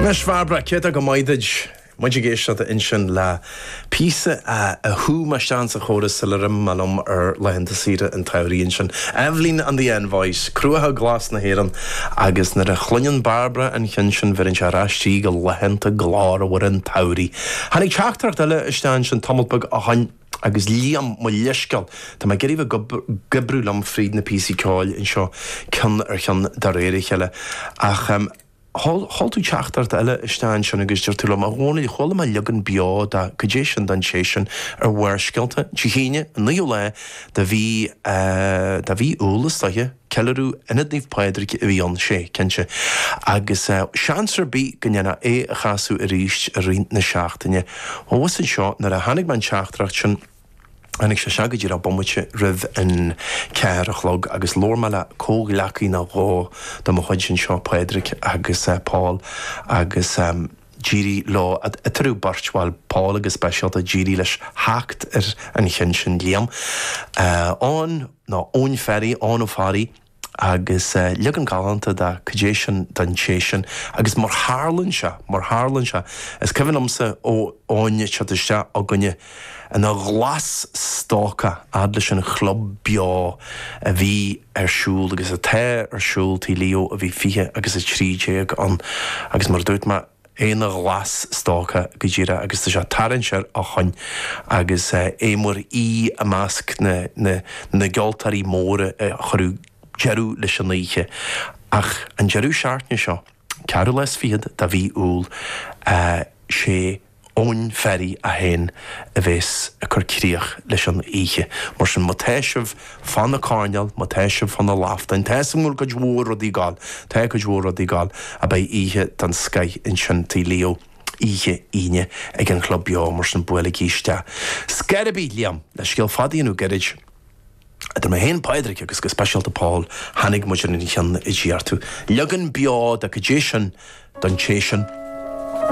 Anois Bhairbre, céard ag a mbeidh muid ag éisteacht ansin le píosa a a chuir mé isteach sa chóras sular imigh mé liom ar laethanta saoire an tsamhraidh ansin, Evelyn and the Envoys, Cruacha Glas' na hÉireann agus nuair a chluineann Bairbre an ceann sin bheireann sé ar ais í go laethanta glórmhara an tsamhraidh. Tháinig teachtaireacht eile isteach ansin tamalt beag ó shoin. Agus Liam, mo leithscéal, tá mé ag iarraidh bheith ag oibriú liom fríd na píosaí ceoil anseo ceann ar cheann de réir a chéile. Ach em. sheol, sheol tú teachtaireacht eile isteach ansin agus deir tú liom, 'A Dhónaill, chuala mé leagan beo de, cad é sin don té sin ar Bharrscéalta, Dé hAoine, an 9ú lá de mhí eh, de mhí Iúil, is dóiche. Ceiliúradh Ionad Naomh Pádraig a bhí ann, sea, cinnte, agus seans ar bith go ndéanfá é a chasadh arís i rith na seachtaine. Thuas anseo, nuair a tháinig mé an teachtaireacht sin, tháinig sé seo go díreach bomaite roimh an ceathair a chlog, agus labhair mé le comhghleacaí nó dhó de mo chuid anseo, Pádraig agus Paul, agus. D'éirigh leo eatarthu beirt bhuel, Paul go speisialta, d'éirigh leis theacht ar an cheann sin, Liam. Eoin, nó Eoin Ferry, Eoin Ó Fearraigh, agus leagan galánta de Cad é sin don té sin. Agus mar tharlann sé, mar tharlann sé, is cuimhin liomsa Eoin ag teacht isteach chugainne, ina ghlas-stócach, a fhad leis an chlub beo a bhí ar siúl agus atá ar siúl Tigh Leo a bhí 20 agus 13 ann agus mar a dúirt mé ina ghlas-stócach go díreach agus tá sé ag tarraingt ar ais chugainn agus é mar aoi i measc na gceoltóirí móra a chuirfidh deireadh leis an oíche ach an deireadh seachtaine seo. Ceathrú lá is fichead de mhí Iúil 'sé Eoin Ferry é féin a bheas ag cur críoch leis an oíche. Mar sin, má tá sibh fá na coirnéil, má tá sibh fá na laftáin, tá a fhios agam go bhfuil cuid mhór rudaí ag gabháil, tá cuid mhór rudaí ag gabháil, ach beidh oíche den scoith ansin Tigh Leo oíche Aoine ag an Club Beo, mar sin buailigí isteach. Scor ar bith, Liam, le scéal fada a dhéanamh gairid. Idir mé féin, Pádraig agus go speisialta Paul, tháinig muid ar an cheann a d'iarr tú. Leagan beo de 'Cad é sin don té sin.